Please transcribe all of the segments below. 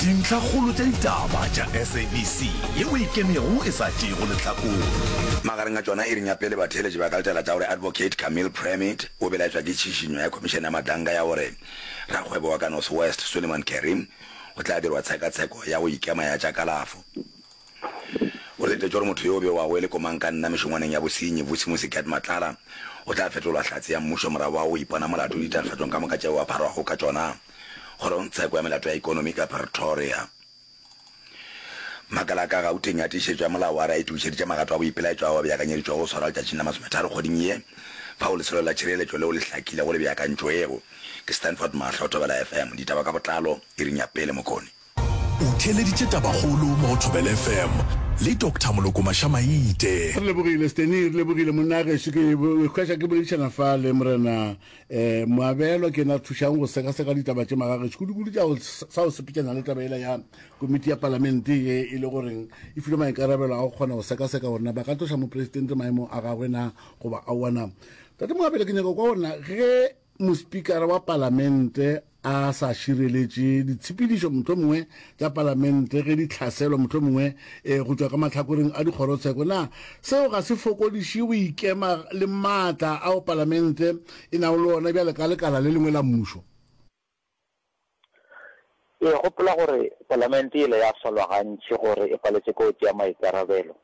Dintlhakgolo tša ditaba tša SABC ye o e kenego e sa tšeego lehlakore. Magareng a tšona, iring ya pele batheeletši ba ka letela taolo ya Advocate Camille Premitt. O belaetšwa ke tšhišinyo ya khomišene ya matlanka ya gore rakgwebo wa ka North West Suleiman Karim o tla dirwa tshekatsheko ya go ikema ya tša kalafo. O letetše gore motho yo o bewago e le komankanna mešongwaneng ya bosenyi, Vusi Musiket Matlala, o tla fetolwa hlatse ya mmušo morago ga go ipona molato ditatofatšong ka moka tšeo a pharwago ka tšona. Kgorongtsheko ya Melato ya Ekonomi ka Pretoria. Makala a ka Gauteng a tiišetšo ya molao wa re a itokišeditše magato a boipelaetšo ao a beakanyeditšwego go swarwa letšatšing la masometharo kgweding ye, fao lesolo la tšhireletšo leo le hlakilego le beakantšwego ke Stanford Mahlo, Thobela FM. Ditaba ka botlalo iring ya pele mokone. O theeleditše tabakgolo mo go Thobela FM le Doctor Moloko Mašamaite. Re lebogile Steny, re lebogile monna geso ke hwetša ke boledišana fa le Morena um Moabelo ke na thušang go sekaseka ditaba tše maga geso kudu-kudu tša go sa go sepetšana le taba ela ya komiti ya palamente ye e le goreng e filwe maikarabelo a go kgona go sekaseka gore na ba ka tloša mopresidente maemong a gagwe na goba aowa na. Tate Moabelo ke nyaka kwa gore na ge mospikara wa palamente a sa šireletše ditshepedišo mohlomongwe tša Palamente ge di hlaselwa mohlomongwe e, go tšwa ka mahlakoreng a dikgorotsheko. Na seo ga se fokodiše boikema le maatla ao Palamente e nago le ona bjale ka lekala le lengwe la mmušo? Ee, gopola gore Palamente yela ya solwa gantši gore e paletše kotsi ya maikarabelo.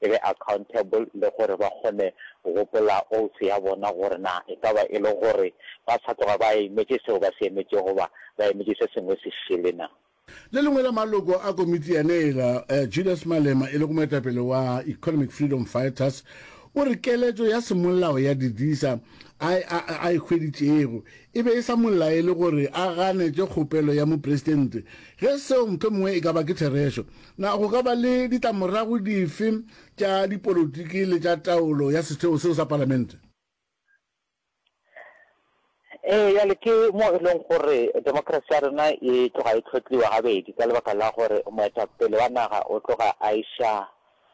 e be accountable le gore ba kgone go gopola oath ya bona gore na e ka ba e le gore ba sa tloga ba emetše seo ba se emetšego goba ba emetše se sengwe se šele na. Le lengwe la maloko a komiti ya Nail, Julius Malema e lego moetapele wa Economic Freedom Fighters o re keletšo ya semolao ya Didisa a a e hweditšego e be e sa mo laele gore a ganetše kgopelo ya mopresidente ge seo mohlomongwe e ka ba ke therešo Na go ka ba le ditlamorago dife tša dipolotiki le tša taolo ya setheo seo sa Palamente? Ee, bjale ke mo e lego gore demokrasi ya rena e tloga e hlotliwa gabedi ka lebaka la gore moetapele wa naga o tloga a iša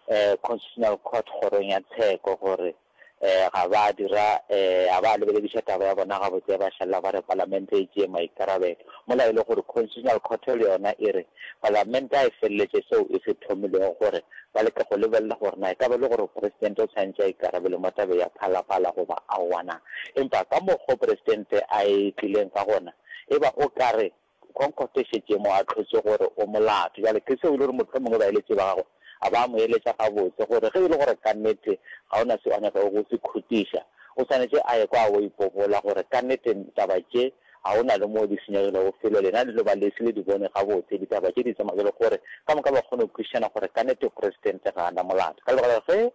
um Constitutional Court, Kgorong ya Tsheko, gore um ga ba dira um ga ba lebelediša taba ya bona gabotse ba šalela ba re palamente e tšee maikarabelo mola e le gore constitutional court le yona e re palamente a e feleletše seo e se thomilego gore ba leke go lebelela gore na e ka ba le gore presidente o tshwantše a ikarabele mo tabe ya phalaphala goba aowana empa ka mokgo presidente a e tlileng ka gona e ba o ka re Concord e šetše e mo ahlotše gore o molato. Bjale, Chris o ile gore mohlomongwe baeletši ba gagwe a ba mo eletša gabotse gore ge e le gore ka nnete ga o na seo a nyakago go se khutiša, o swanetše a ekwa a o ipobola gore ka nnete taba tše ga go na le mo di senyegilego felo. Lena le no ba le se le di bone gabotse ditaba tše di tsamaya bjalo gore ka moka ba kgone go kwešišana gore ka nnete Presidente ga a na molato. Ka lebaka la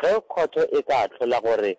ge khotho e ka ahlola gore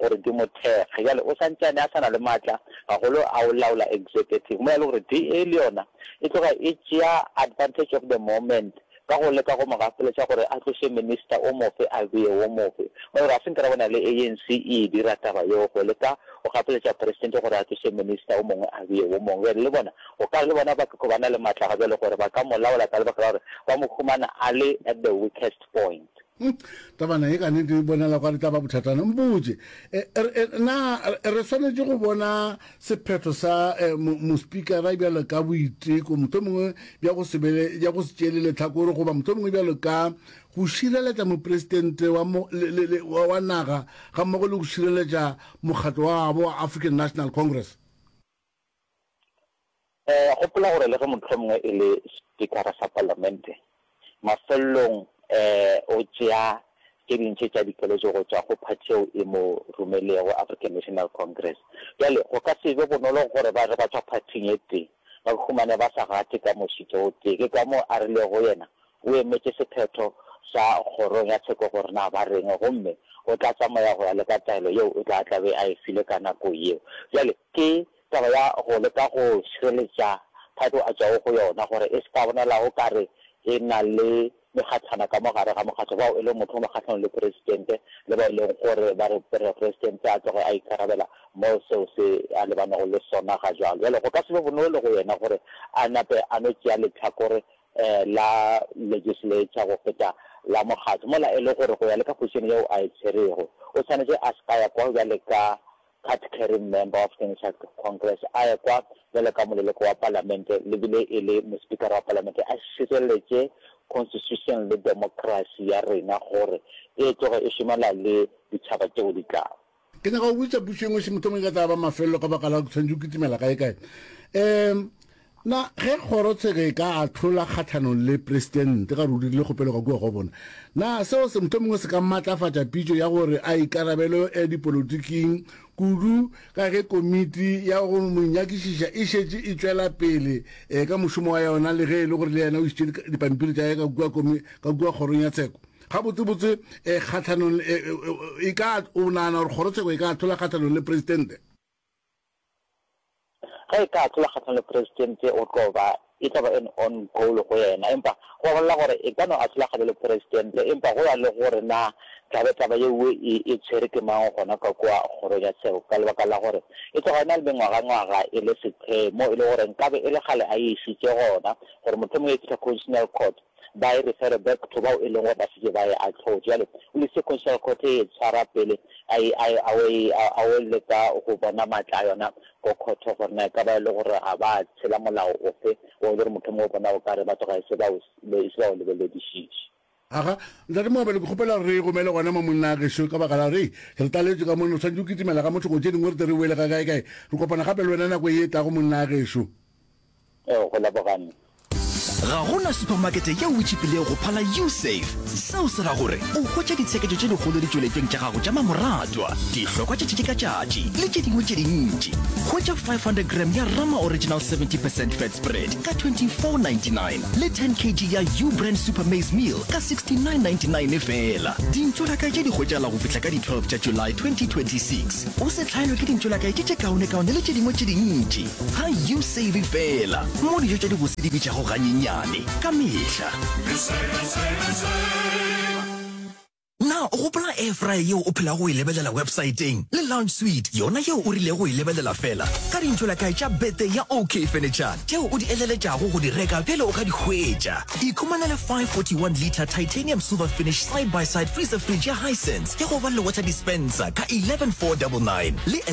gore di mo thekge. Bjale o sa ntšane a sa na le matla gagolo a go laola executive. Mola e le gore DA le yona e tloga e tšea advantage of the moment ka go leka go mo gapeletša gore a tloše minister o mofe a bee wo mofe. Mola e le gore ga se nke ra bona le ANC e e dira taba yeo go leka go gapeletša president gore a tloše minister o mongwe a bee wo mongwe. Bjale le bona o ka re le bona ba keko ba na le matla ga bjale gore ba ka mo laola ka lebaka la gore ba mo humana a le at the weakest point. Hmm, tabana e ka nete e bonala kwa re tla ba bothatana mpotse eh, er, eh, na re swanetše go bona sephetho sa eh, mospikara bjalo ka boiteko moto mongwe bja go sebele bja go se tšele letlhakore goba moto mongwe bjalo ka go šireletša mopresidente wa wa naga ga mmogo le go šireletša mokgatlo wa gabo wa african national congress Gopola gore le ge mohlomongwe e le Spikara sa Palamente, mafelelong o tšea tše dintši tša dikeletšo go tšwa go phathi yeo e mo romelego, African National Congress. Bjale go ka se be bonolo gore ba re ba tšwa phathing e tee ba humane ba sa gate ka mošito o tee. Ke ka moo a rilego go yena, O emetše sephetho sa kgorong ya tsheko gore na ba reng gomme o tla tsamaya go ya le ka taelo yeo o tla tlabe a e file ka nako yeo. Bjale ke taba ya go leka go šireletša thato a tšwago go yona gore e se ka bonala o ka re e na le megatlhana ka mo gare ga mokgatlo, bao e lego motho o mo kgahlanong le Presidente le bao e lego gore ba re re Presidente a tloge a ikarabela mo seo se a lebanego le sona ga jwalo. Bjale go ka se be bonolo go yena gore a nape a no tšea lehlakore la legislature go feta la mokgatlo, mola e le gore go ya le ka position yeo a e tswerego, o swanetše a se ka ya kwa bjale ka card-carrying member of Kennesaw Congress, a ye kwa bjalo ka moleloko wa palamente, le bile e le mospikara wa palamente, a šireletše constitution le democracy ya rena gore e tloge e šomela le ditšhaba tšeo di tlago. ke nyaka go botsa puso engwe se mothomong ka taba mafelelo ka baka la go tshwanetse o kitimela kae kae um na ge kgorotsheko e ka atlhola kgatlhanong le presidente ga re o dirile kgopelo ka kua go bona na seo se motho mongwe se ka maatlafatša pitso ya gore a ikarabelo ya dipolotiking kudu ka ge komiti ya go monyakišiša e šetše e tšwela pele um ka mošomo wa yona le ge e le gore le yena o isitše dipampiri tša ye ka kua kgorong ya tsheko gabotsebotse eh, kgatlhanong eh, eh, e ka o nagana gore kgorotsheko e ka atlhola kgatlhanong le presidente ge e ka atlhola kgatlhanong le presidente o tlo ba e tlo ba an on goal go yena empa go bolela gore e ka no atlhola kgatlhanong le presidente empa go ya le gore na tlabe taba yeo e, e tshwere ke mang gona ka kua kgorong ya tsheko ka lebaka la gore e tloga e na le mengwagangwaga e le sephemo e le gore nkabe e le gale a e isitse gona gore motlho mongwe e fitlha constitutional court ba e refere back to bao e leng gore ba šetše ba e ahlotše. Bjale o le sequential court e e tshwara pele a e, a e, a o e, a, a o leka go bona maatla a yona ko khotho gore na e ka ba e le gore ga ba tshela molao ofe o e le gore mohlomongwe o bona o ka re batho ga e se ba o, e se ba o lebeledišiše. Aga, Ntate Moabelo, ke kgopela gore re e romele gona mo, monna gešo, ka baka la gore, hei, re tlaletšwe ka mono, re swanetše go kitimela ga motho go tše dingwe gore tle re boele ga kaekae. Re kopana gape le wena nako ye e tlago, monna gešo. Ee, go laboganne. Ga go na supamakete yeo e tšipilego go phala U-Save. Seo se ra gore o hwetša ditsheketšo tše dikgolo ditšweletšong tša gago tša mamoratwa, dihlokwa tšatši ka tšatši le tše dingwe tše dintši. Hwetša 500 gram ya Rama Original 70 percent Fat Spread ka 24.99 le 10 kg ya U-Brand Super Maize Meal ka 69.99 feela. Dintšwelakae tše di hwetšagala go fihla ka di 12 tša July 2026. O se hlaelwe ke dintšwelakae tše tše kaonekaone le tše dingwe tše dintši. Ga you save fela mo dijo tša dibose di bitšago ganyenyane ka mehla. Na o gopola air fryer yeo o phelago o e lebelela websaeteng le lounge suite yona yeo o rilego go e lebelela fela ka dintšholakae tša birthday ya OK Furniture tšeo o di eleletšago go di reka pele o ka di hwetša? Ikhumanele 541 litre titanium silver finish side by side freezer fridge ya Hisense ya go ba le water dispenser ka 11499 le a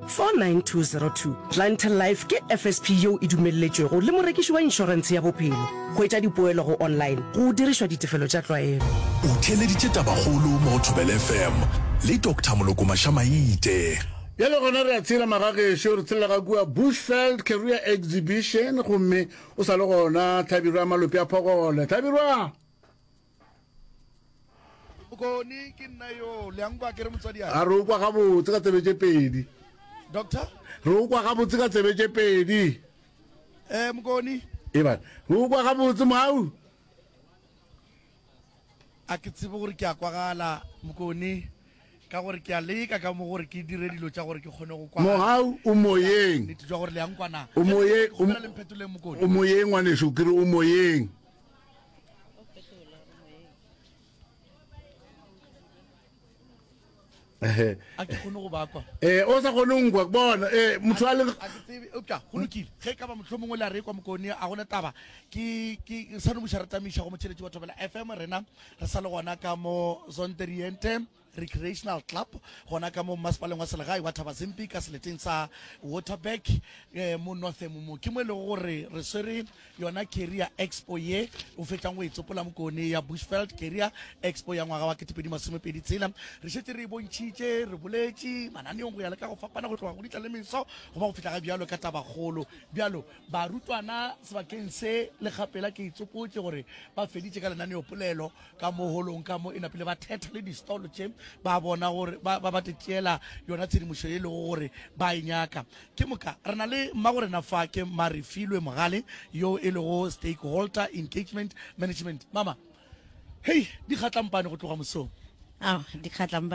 49202, Clientele Life ke FSP yeo e dumelletšwego le morekiši wa inšorentshe ya bophelo. Go etša dipoelo go online go dirišwa ditefelo tša tlwaelo. O theeleditše Tabakgolo mo go Thobela FM le Doctor Moloko Mashamaite. Bjale gona re a tshela magagešo, re tshelela ga kua Bushveld Career Exhibition gomme o sa le gona Tlhabirwa Malope a phogole. Tlhabirwa! bokone ke nna yo le yang kwa ke re motswadi a re o kwa gabotse ka tsebe tše pedi doctor re o kwa gabotse ka tsebe tše pedi eh mokone e ba re o kwa gabotse mau a ke tsebe gore ke a kwagala mokone ka gore ke a leka ka mo gore ke dire dilo tša gore ke kgone go kwa mogau o moyeng gore le yang kwana o moyeng o moyeng ngwaneso ke re o moyeng Eh, a ke kgone go bakwa eh, o sa kgone nkwa bona eh, motho a leupša go lokile ge ka ba motlho mongwe le a rekwa mokone a gona taba ke sano moša re tamiša go motšheletši wa thobela fm rena re sa le gona ka mo zonteriente Recreational Club gona ka mo mmasepaleng wa selegae wa Thabazimpi ka seleteng sa Waterberg mo Northam mo. Ke mo e lego gore re swere yona Career Expo ye o fetšang go e tsopola mo kone ya Bushveld Career Expo ya ngwaga wa ketepedi masome pedi tshela. Re šetše re e bontšhitše, re boletše mananeong go ya le ka go fapana go tloga go ditla le meso go ba go fihla ga bjalo ka tabakgolo. Bjalo barutwana sebakeng se le kgapela ke e tsopotše gore ba feditše ka lenaneopolelo ka mo holong ka mo e napile ba thetha le distolo tše ba bona gore ba ba tšeela yona tshedimošo e lego gore ba e nyaka ke moka re na le mmagorena fa ke marefilwe mogale yo e lego stakeholder engagement management mama hei di kgatlampane go tloga mosong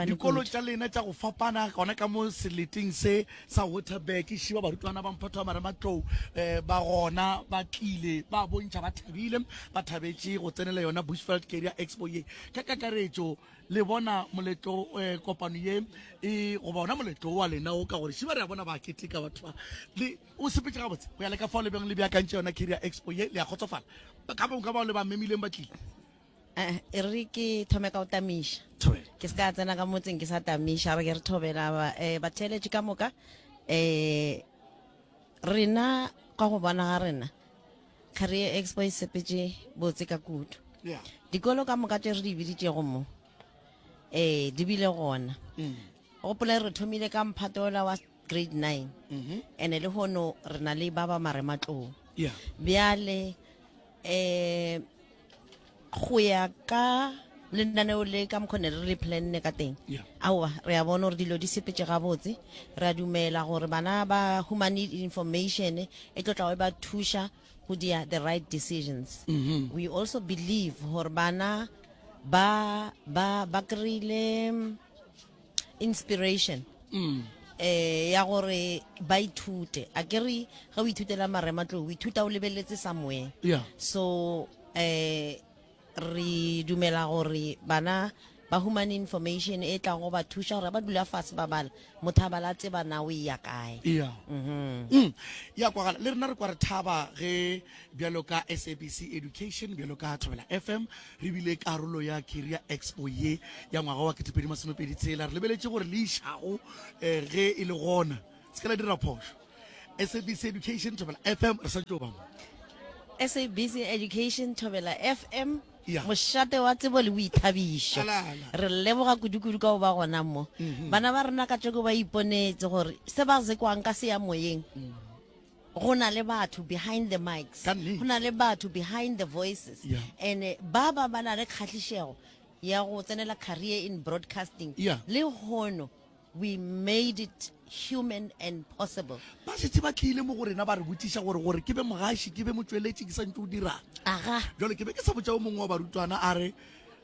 dikolo tša lena tša go fapana gona ka mo seleting se sa Waterberg e šiba barutwana ba Mphato wa Marematlou um ba gona ba tlile ba bontšha ba thabile ba thabetše go tsenela yona Bushveld Career Expo ye ka kakaretšo le bona moletlo um kopano ye e goba ona moletlo wa lena o ka gore šiba re a bona ba keteka batho ba le o sepetše gabotse go ya le ka fao le beng le beakantše yona Career Expo ye le a kgotsofala ka bonka bao le ba memileng ba tlile Eh, e re ke thome ka go tamiša ke se ka tsena ka motseng ke sa tamiša re ke re thobela eh, batheeletše ka moka um rena ka go bona ga rena career expo e sepetse botse ka kudu dikolo ka moka tše re di biditšego mo um di bile gona mm. gopole re thomile ka mphato ola wa grade nine mm-hmm. and-e le gono re na le ba ba marematlong bjale eh go ya ka lenaneo le ka mokgone re le planne ka teng Yeah. aowa re a bona gore dilo di sepetse gabotse re a dumela gore bana ba humane information e tlo tlago e ba thuša go dia the right decisions we also believe gore bana ba ba ba kry-ile inspiration mm. eh ya gore ba ithute a ke re ge o ithutela marematlou o ithuta o lebeletse somewhere yeah. so eh re dumela gore bana ba human information e tlang go ba thuša gore ba dula fase ba bala motho a bala tseba na o eya kae ya mhm. mm. kwagala le rena re kwa re thaba ge bjalo ka sabc education bjalo ka thobela fm Re bile karolo ya Career Expo ye ya ngwaga wa 2026. Re lebeletše gore le išago eh, ge e le gona. Se ka la dira phošo. SABC Education Thobela FM re sa tšo ba mo. SABC Education Thobela FM Ya. mošate wa tsebo le boithabišo Ala, ala. re leboga kudukudu ka go ba gona mo bana ba rena ka tšoko ba iponetse gore se ba zekwang ka se ya moyeng Go na le batho behind the mics. Ka nnete. Go na le batho behind the voices. Yeah. And eh, ba ba ba na le kgahlišego ya go tsenela career in broadcasting. Yeah. Le hono we made it human and possible. ba šetse ba tlile mo go rena ba re botšiša gore gore ke be mogaši ke be motšweletši ke sa ntse o dirang Aga. jalo ke be ke sa botša o mongwe wa barutwana a re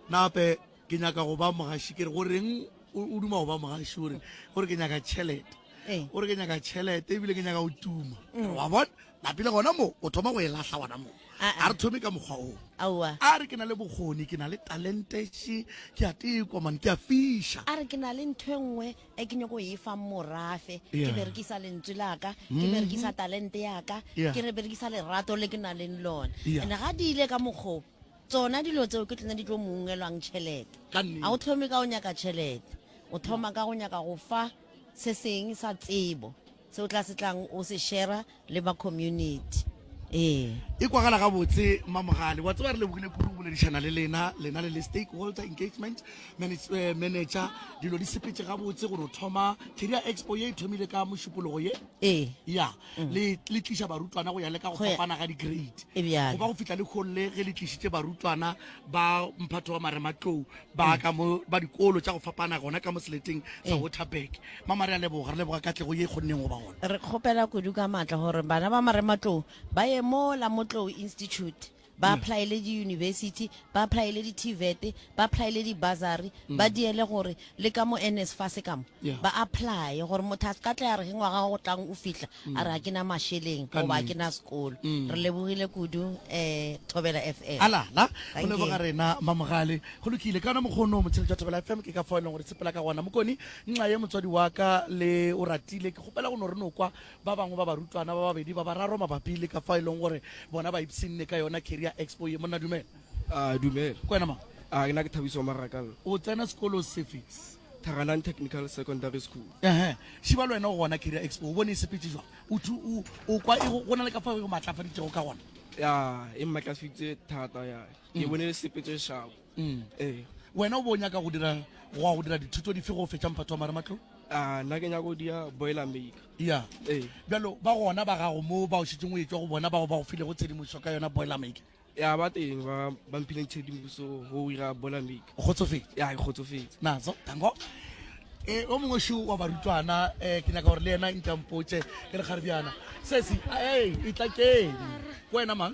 nape ke nyaka go ba mogaši kere go reng o duma go ba mogaši ore gore ke nyaka tšhelete eh. ore ke nyaka tšhelete ebile ke nyaka go tuma mm. wa bona napile gona mo o thoma go e lahla gona mo ah, ah. a re thome ka mokgwa o a re ke na le bokgoni ke na le talentese ke a tekomane ke a fiša a re ke na le ntho e nngwe e ke nyako e fang morafe ke berekisa lentswe laka ke mm-hmm. berekisa talente yaka ke re berekisa lerato le ke na leng lone and ga di ile ka mokgoo Tsona dilo tseo ke tsona di tlo mo ungelwang tšhelete. Ka nnete. Ga o thome ka go nyaka tšhelete, o thoma ka go nyaka go fa se seng sa tsebo se o tla se tlang o se shera le ba community. Ee. E kwagala gabotse Mmamogale. Wa tseba re lebogile kudu go boledišana le lena, lena le le Stakeholder Engagement Manage, eh, Manager. Dilo di sepetše gabotse gore o thoma Career Expo ye e thomile ka Mošupologo ye. Ee. Ya. le le tliša barutwana go ya le ka go Go ya- fapana ga di-grade E bjalo. go ba go fihla le kgolle ge le tlišitše barutwana ba mphatho wa marematlou ba ka mo ba dikolo tša go fapana gona ka mo seleteng sa Eh. waterberg mama re a leboga re leboga katlego ye e kgonneng go ba gona re kgopela kudu ka maatla gore bana ba marematlou ba ye mo la motlou institute ba aplaele diyunibesithi, ba aplaele di-TVET, ba aplaele di-bursary, ba diele gore le ka mo NSFAS ka mo, Yeah. ba aplaye gore motho a se ka tla ya re ge ngwaga wa go tlang o fihla a re ga ke na mašeleng Ka goba ga ke nnete. na sekolo. Re lebogile kudu um Thobela FM. a lala go Thank you. leboga rena mamogale go lokile ka ona mokgono motshedi jwa thobela fm ke ka fao e leng gore sepela ka gona mokoni nxa ye motswadi wa ka le o ratile ke kgopela go no re no kwa Ba bangwe ba barutwana ba babedi ba bararo mabapi le ka fao e lego gore bona ba ipshinne ka yona Career Expo ye. Monna Dumela. A dumela. Ke wena mang? A ke na ke Thabiso Marakalla. O tsena sekolo sefe? Tharanang Technical Secondary School. Ehe. Šiba le wena o gona Career Expo, o bone e sepetše jwang? O thu, o, o kwa e go, go na le ka fao e go maatlafaditšego ka gona? Ya, e mmatlafitše thata, ya. Ke bone e sepetše šabo. Mm, ee. Wena o bo nyaka go dira go ya go dira dithuto dife go fetša mphato wa marematlou? Ah, nna ke nyaka go dira boiler maker. Ya. Ee. Bjalo ba gona ba gago mo ba o šetšeng o etšwa go bona bao ba go filego tshedimošo ka yona boiler maker. Ya ba teng ba ba mphileng tshedimošo go dira boiler maker. O kgotsofetse? Ya, ke kgotsofetse. Nazo, tango. Eh, o mongwe šo wa barutwana eh ke nyaka gore le yena nkampotše ke le kgaribjana sesi ei e tla keng wena mang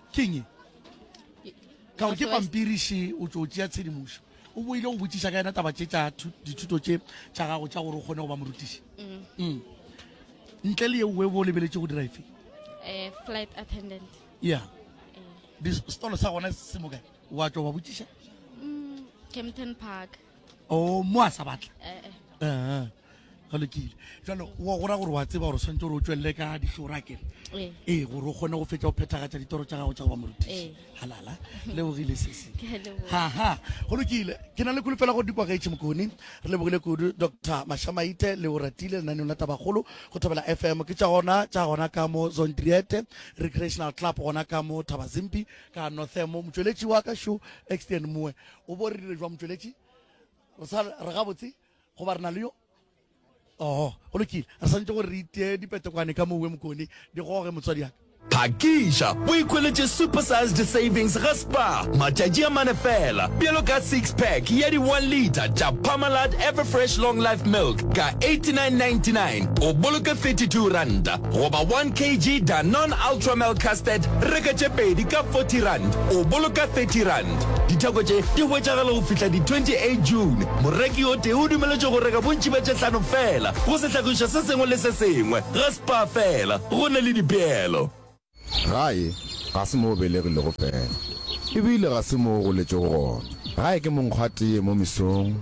Keng e? Ka gore ke pampiriše o tšo tšea tshedimošo. O boile go botšiša ka yena taba tše tša dithuto tše tša gago tša gore o kgone go ba morutiši. Mm. Mm. Ntle le yeo webo o lebeletše go dira efe? Eh, flight attendant. Yeah. Eh. Setolo sa gona se mokae? Wa tšwa wa botšiša? Mm, Kempton Park. o mo a sa batla ga lokile jalo wa gora gore wa tseba gore o tshwanetse gore o tswelele ka dihlora kere ee gore o kgone go fetsa go phethagatša ditoro tša gago tša go ba morutiši halala lebogile sese haha go lokile ke na le kolofela gore dikwa gaetšhe mokone re lebogile kudu dr mashamaite le o ratile lenaneong la tabagolo go thobela fm ke tša gona tša gona ka mo zondriete recreational club gona ka mo thabazimpi ka northemo motsweletši wa ka šo extern moe o bo re dire jwa motšweletši re sa re gabotse goba re na le yo oho go lokile re santse gore re itee dipetekwane ka mowe mokone di goge motswadi yaka phakiša o ikhweletše supersized savings ga spar matšatši a mane fela bjalo ka six pack ya di-one liter tša parmalat everfresh long life milk ka 8999 o boloke 32 ranta goba 1 kg danon ultramel casted reka tše pedi ka 40 rand o boloka 30 rand Ditheko tše di hwetšagala go fihla di-28 June. Moreki o tee o dumeletšwe go reka bontši bja tše hlano feela go sehlagišwa se sengwe le se sengwe ga Spar feela. Go na le dipeelo. Gae ga se mo o belegilego feela, e bile ga se mo o goletšego gona. Gae ke monkgwatee mo mesong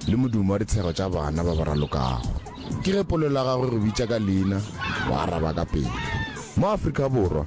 le modumo wa ditshego tša bana ba ba ralokago. Ke ge polelo ya gagwe e go bitša ka leina, o araba ka pela. Mo Afrika Borwa,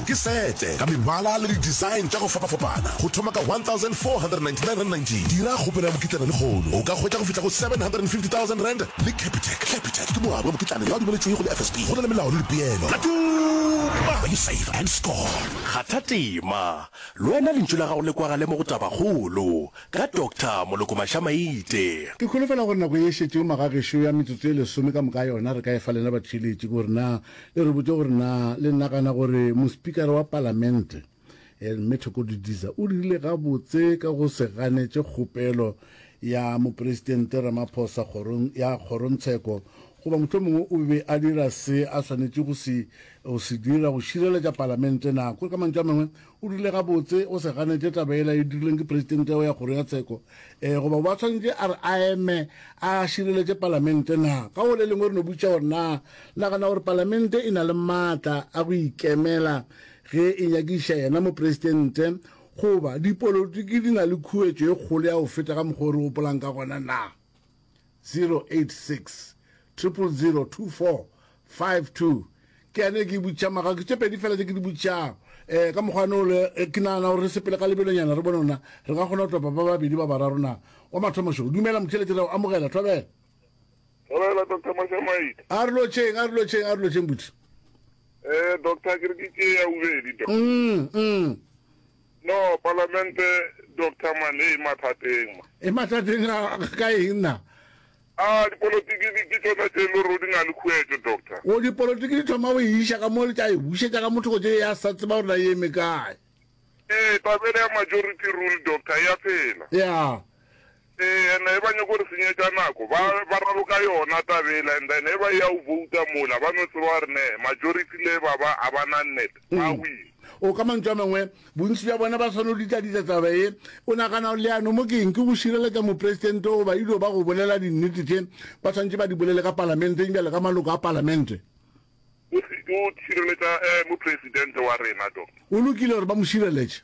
Ke sete ka mebala le di-design tša go fapafapana go thoma ka R1,499. Dira kgopelo ya mokitlana lehono, o ka hwetša go fihla go R750,000 le Capitec. Capitec ke moabi wa mokitlana yo a dumeletšwego le FSP go na le melao le dipeelo. Tla tuma! You save and score! Kgatha tema, le wena lentšu la gago le kwagale mo go Tabakgolo ka Doctor Moloko Mashamaite. Ke holofela gore nako ye e šetšego magagešo ya metsotso e lesome ka moka yona re ka e fa lena batheeletši gore na E re botše gore na le nagana gore mospikara wa palamente, Mme Thoko Didiza o dirile gabotse ka go se ganetše kgopelo ya Mopresidente Ramaphosa kgorong ya kgorontsheko goba mohlomongwe o be a dira se a swanetše go se go se dira go šireletša palamente na? Kore ka mantšu a mangwe o dirile gabotse o se ganetše taba yela e dirilweng ke Presidente wa ya kgoro ya tsheko Ee goba ba swanetše a re a eme a šireletše Palamente na? Ka go le lengwe re no botšiša gore na nagana gore Palamente e na le maatla a go ikemela ge e nyakišiša yena Mopresidente goba dipolotiki di na le khuetšo e kgolo ya go feta ka mokgwa o re gopolang ka gona na? 086 0002452 ke ane ke butša maga ke tše pedi fela tše ke di butšago um ka mokgwa ne ole ke nagana gore re sepele ka lebelonyana re bone ona re ka kgona go topa ba babedi ba bararo na wa mathomošo dumela motšheletše reo amogela thobela thobela doctor mashamaite a re lotšheng a re lotšheng a re lotšheng buti um doctor ke re ke tšee ya bobedi doctor mm, mm. No palamente Doctor man e mathateng ma. E mathateng a ka eng na? A dipolotiki di ke tšona tše le rodi na le khuetšo Doctor. O dipolotiki di thoma go e iša ka mo le tša e bušetša ka motho go tše ya sa tseba gore na e eme kae. E tabele ya majority rule Doctor ya phela. Ya. Ee, and eba nyoko re senyetša nako, ba, ba raloka yona taba yela, and then eba ya u vouta mola, ba no tseba gore ne, majority le ba ba a ba na net, ba win. O, ka mantšu a mangwe, bontši bja bona ba swanelo ditladitla taba ye. O nagana leano mo keng? Ke go šireletša mopresidente goba ilio ba go bolela dinnete tše ba swanetše ba di bolele ka palamenteng bjale ka maloko a palamente? O se, o šireletša, eh, mopresidente wa rena, Doctor. Go lokile gore ba mo šireletše.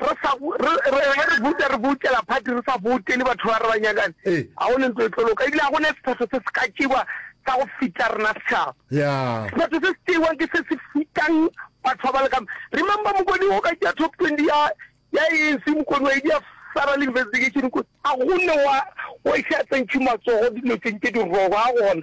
re sa bo, re, re, ge re bouta, re boutela phati, re sa boutele batho ba re ba nyakang, Ee. ga go ne ntlo e tlo loka, ebile ga go ne sephetho se se ka tšewa sa go fita rena setšhaba. Ya. Sephetho se se tšeiwang ke se se fitang batho ba ba lekang. Remember mokoni o ka tšea top 20 ya, ya ANC, mokoni wa e dia federal investigation, mokoni, ga go ne wa, wa iša tsentšhi matsogo dilotšeng tše di wrong, ga gona.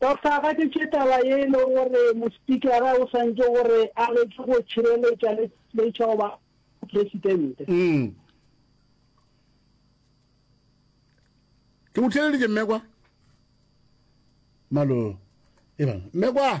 Ba fagadiše taba ye e lego gore mospikara o swantše gore a leke go tšhireletša le tšhireletša go ba presidente. Mm. Ke go tšhireleditše mmekwa malo ebang mmekwa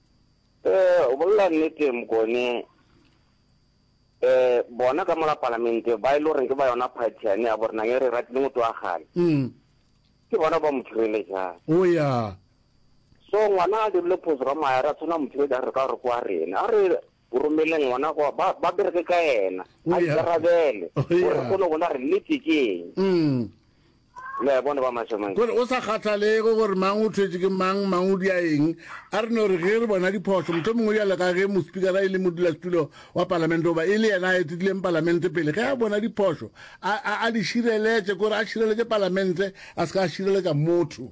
Eh, o bolela nnete Mokone. Eh, bona ka mola palamente ba ile e gore ke ba yona party yane ya borenang e re ratile motho wa gale. Mm. Ke bona ba mo thireletsang. O ya. So ngwana a dirile phoso ka maera tshwana mo thireletsang re ka gore kwa rena. A re O romele Ngwana gore ba, ba bereke ka Yena, O a ya. ikarabele, O gore ya. re kgone go bona gore nnete ke eng. Mm. Le a bona, ba mašemašema. Gore go sa kgathalege gore mang o thwetše ke mang, mang o dia eng, a re no re ge re bona diphošo, mohlho mongwe bjalo ka ge mospikara e le modulasetulo wa Palamente goba e le yena a etetlileng Palamente pele, ge a bona diphošo, a, a, a di šireletše, ke gore a šireletše Palamente, a se ka a šireletša motho.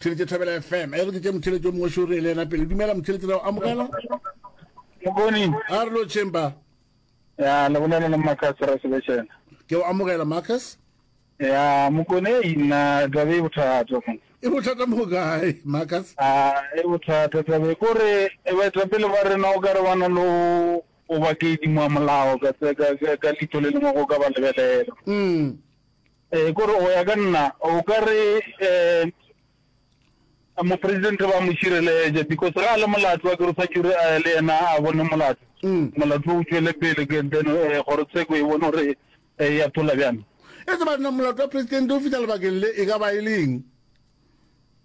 Theletše Thabela FM. E re ke tše motheletše o mongwe šori e le yena pele. Dumela motheletše ra go amogela. Morning. A re lo chamber. Ya le bolela le Marcus ra sebetšena. Ke o amogela Marcus. Ya mokone ina tlabe e bothata. E bothata mo kae Marcus? Ah e bothata tlabe kore e ba tla pele ba rena o ka re bana lo o ba ke dimo molao ka ka ka litho le lengwe go ka ba lebelela. Mm. Ee, kore go ya ka nna o ka re um mopresidente ba mo šireletša because ga a le molato wa kere o tshwanetse gore eh, le yena a bone molato Mm. molato o tšwele pele ke then eh, kgorotsheko e bone gore eh, ya thola bjang e tseba nna molato wa presidente o fihla lebakeng le e ka ba e leng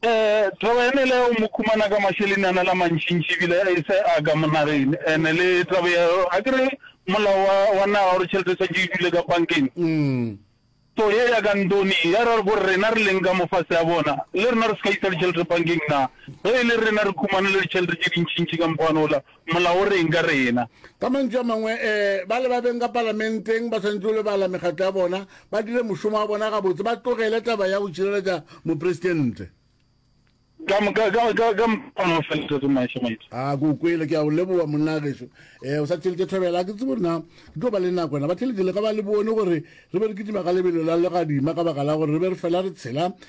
Um taba yane le o mo khumana ka mašeleni a na la mantšintši ebile a ise a ka monageng ene le taba ya a kere molao wa wa naga gore tšhelete tshwantse e dule ka bankeng mm. so ye ya ka ntoni ya ra gore rena re leng ka mofase ya bona le rena re se ka isa ditšhelete bankeng na ge e le rena re khumane le ditšhelete tše dintšintši ka mokgwanola Molao o re'ng ka rena? Ka mantšu a mangwe, bale ba beng ka Palamenteng ba swanetše go lebala mekgatlo ya bona, ba dire mošomo wa bona gabotse, ba tlogele taba ya go tšhireletša Mopresidente. Ka moka, ka, ka, ka moka o felesetse maisha maitse. A ke o kwele, ke a o leboa monna gešo. Eh, o sa theletše thobela, ke tsebo na ke tlo ba le nako na. Ba theletše le ka ba le bone gore re be re kitima ka lebelo la legadima ka baka la gore re be re fela re tshela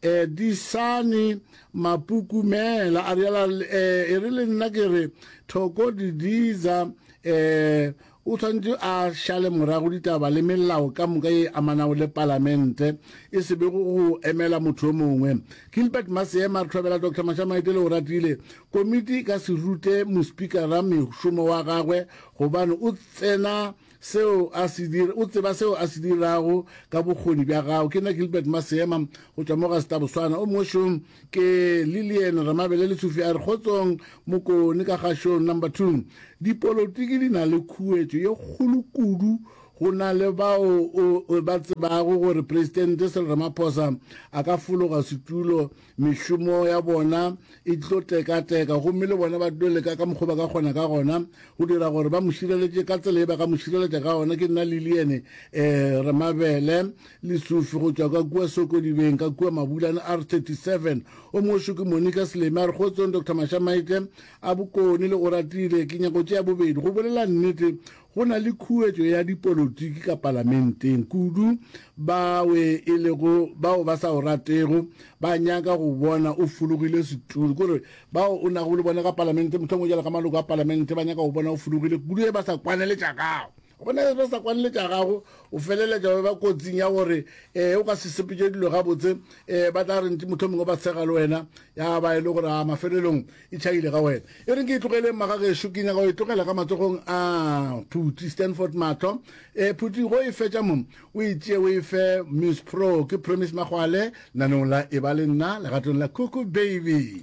E, disane, mapukumela, a reala, e, e re le nna ke re, Thoko Didiza, e, o tshwanetse a šale morago ditaba le melao ka moka ye amanago le palamente, e se be go go emela motho yo mongwe. Gilbert Maseema, re tlhobela Doctor Mashamaite le Oratile, komiti e ka se rute mospikara mešomo wa gagwe gobane o tsena seo a se dira, o tseba seo a se dirago ka bokgoni bja gago. Ke nna Gilbert Maseema go tšwa mo ga Setaboswana. O mongwe šong ke Lillian Ramabele Letsofi a re, Kgotsong Mokone ka ga show number two. Dipolotiki di na le khuetšo ye kgolo kudu go na le bao o ba tsebago gore Presidente Cyril Ramaphosa a ka fologa setulo mešomo ya bona e tlo tekateka gomme le bona ba tlo leka ka mokgwa ba ka kgona ka gona go dira gore ba mo šireletše ka tsela e ba ka mo šireletša ka gona ke nna le liene um eh, re mabele le sufi go tšwa ka kua sokodibeng ka kua mabulane r 37 o mošo ke monica seleme a re kgotsong dr mashamaite a bokone le o ratile ke nyako tše ya bobedi go bolela nnete Go na le khuetšo ya dipolotiki ka palamenteng, kudu bawe e lego bao ba sa o ratego ba nyaka go bona o fulugile setulo. Kore bao o nago le bona ka palamente, mohlomongwe jalo ka maloko a palamente, ba nyaka go bona o fulugile kudu ge ba sa kwane le tša gago. Go bona ge ba sa kwane le tša gago, o feleletša o eba kotsing ya gore um o ka se sepetše dilo gabotse, um ba tla re ntše mohlomongwe ba tshega le wena, ya ba e le gore a mafelelong E tšhaile ga wena. E reng ke e tlogeleng magagešo, ke nyaka go e tlogela ka matsogong a Phuti Stanford Matlho. E, Phuti, go e fetša mo, o e tšee o e fe Miss Pro. Ke Promise Magwale, lenaneong la Eba le Nna, legatong la Cuckoo Baby.